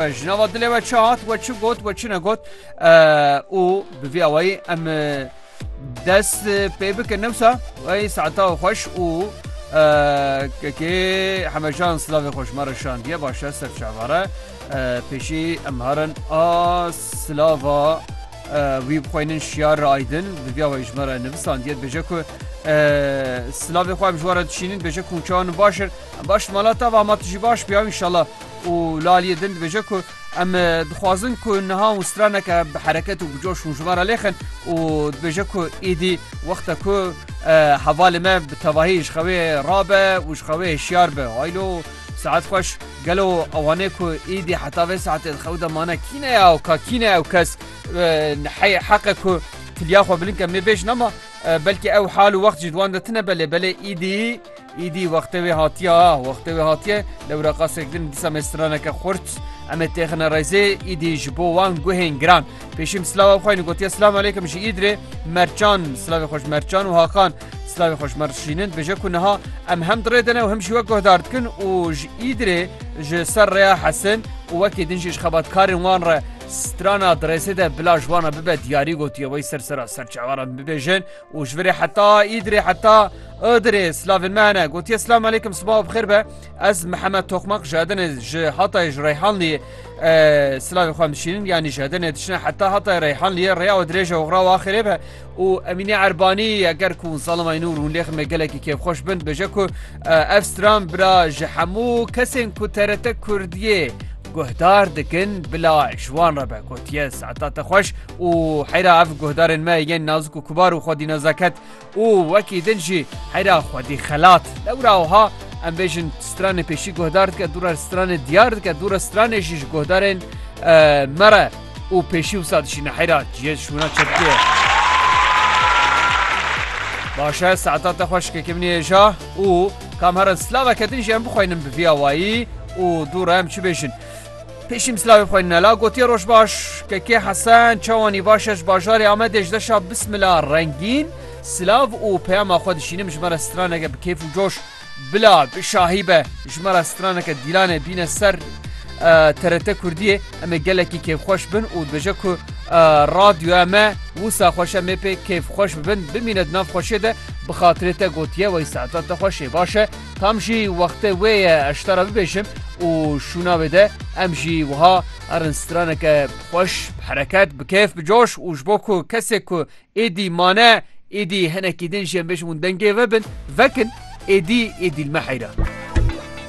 Ji nava dilê we çi hat, we çi got, we çi negot û bi vî awayî em dest pê bikin newsa wey saeta xweş û kekê hemejan silavê xweş me re şandiye başe ser çavare pêşî em harin a silava wî bixweynin şiyar re aydin bi vî awayî ji me re nivisandiye dibêje ku silavê xwe em ji we re dişînin dibêje ku çawan başir baş malata va ma tu jî baş biya inşallah û li aliyê din dibêje ku em dixwazin ku niha û straneke bi hereket û bi coş hûn ji van re lêxin û dibêje ku êdî wexta ku hevalê me bi tevahî ji xewê rabe û ji xewê hişyar be haylo saet xweş gelo ewanê ku êdî heta vê saetê di xew de mane kî ne ya ka kî ne ew kes heyê heqe ku tiliya xwe bilin ke mê bêj nema belkî ew hal û wext jî di wan de tine belê belê êdî Îdî wextê wê hatiye a, wextê wê hatiye, lewra qasek din dîsa me straneke xurt. Em ê têxine rêzê, îdî ji bo wan guhên giran. Pêşîm silava xwe yên gotiye silav aleykim ji îd rê Mercan, silavê xwe ji Mercan û Hakan. Silavê xwe ji me rişînin dibêje ku niha em hem dirê dine û hem jî wek guhdar dikin û ji îd rê ji ser rêya hesin û wekî din jî ji xebatkarên wan re strana di rêzê de bila ji wan re bibe diyarî gotiye wey ser sera serçevaran bibêjin û ji virê heta Îdirê heta Idirê slavên me hene gotiye Slam aleykum sibav bixêr be ez Mihemed Toxmak ji Edenê ji Hatayê ji Reyhanliyê silavê xwe dişînin yanî ji Edenê dişine heta Hatayê Reyhanliyê rêya we dirêje oxra wa xêrê be û Emînî Erbanî eger ku Zalimay Nûr hûn lêxin me gelekî kêfxweş bin bêje ku ev stran bira ji hemû kesên ku TRT Kurdiyê guhdar dikin bila ji wan re be gotiye saeta te xweş û heyra ev guhdarên me yên nazik û kubar û xwedî nezaket û wekî din jî heyra xwedî xelat lewra wiha em bêjin stranê pêşî guhdar dike dûre stranê diyar dike dûre stranê jî ji guhdarên me re û pêşî wisa dişîne heyra ciyê şûna çekiye Başe saeta te xweş ke kimnê êja û kam herin slaveke din jî em bixweynin bi vî awayî û dû re em çi bêjin. Pêşîm silavê xwe nela gotiye rojbaş kekê Hesen çawa nîvaşe ji bajarê Amedê ji deşa bismila rengîn silav û peyama xwe dişînim ji me re straneke bi kêf û coş bila bi şahî be ji me re straneke dîlanê bîne ser TRT Kurdiyê em ê gelekî kêfxweş bin û dibêje ku radyoya me wisa xweş em ê pê kêfxweş bibin bimîne di nav xweşê de bi xatirê te gotiye wey saeta te xweş ê baş e Tam jî wextê wê ye ez ji te re bibêjim û şûna wê de em jî wiha erin straneke xweş, bi hereket, bi kêf, bi coş û ji bo ku kesê ku êdî mane êdî hinekî din jê em bêjim hûn dengê ve bin, vekin êdî êdî li me heyra.